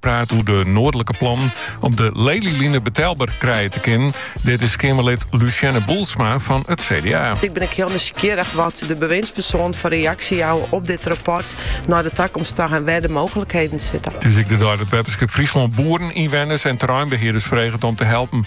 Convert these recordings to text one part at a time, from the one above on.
Praat oer de noardlike plannen om de Lelyline betelber krije te kinnen. Dit is Keamerlid Lucienne Boelsma fan it CDA. Ik bin ek hiel nijsgjirrich wat de bewindspersoanen foar reaksje jouwe op dit rapport nei de takomst ta en wêr de mooglikheden sitte. It is ek de dei dat Wetterskip Fryslân boeren, ynwenners en terreinbehearders freget om te helpen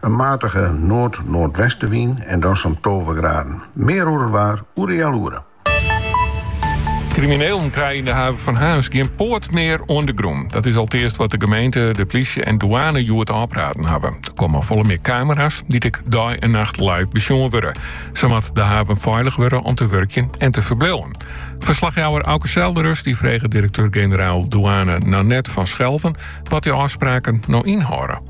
In matige noard-noardwestewyn en dan sa'n tolve graden. Mear oer it waar oer de healoere. Kriminelen krije yn de haven fan Harns gjin poat mear oan de grûn. Dat is alteast wat de gemeente, de plysje en douane hjoed ôfpraat hawwe. Der komme folle mear kamera's, dy't ek dei en nacht live besjoen wurde. Sa moat de haven feilich wurde om te wurkjen en te ferbliuwen. Ferslachjouwer Auke Zeldenrust die frege direkteur-generaal douane Nanette van Schelven wat dy ôfspraken no ynhâlde.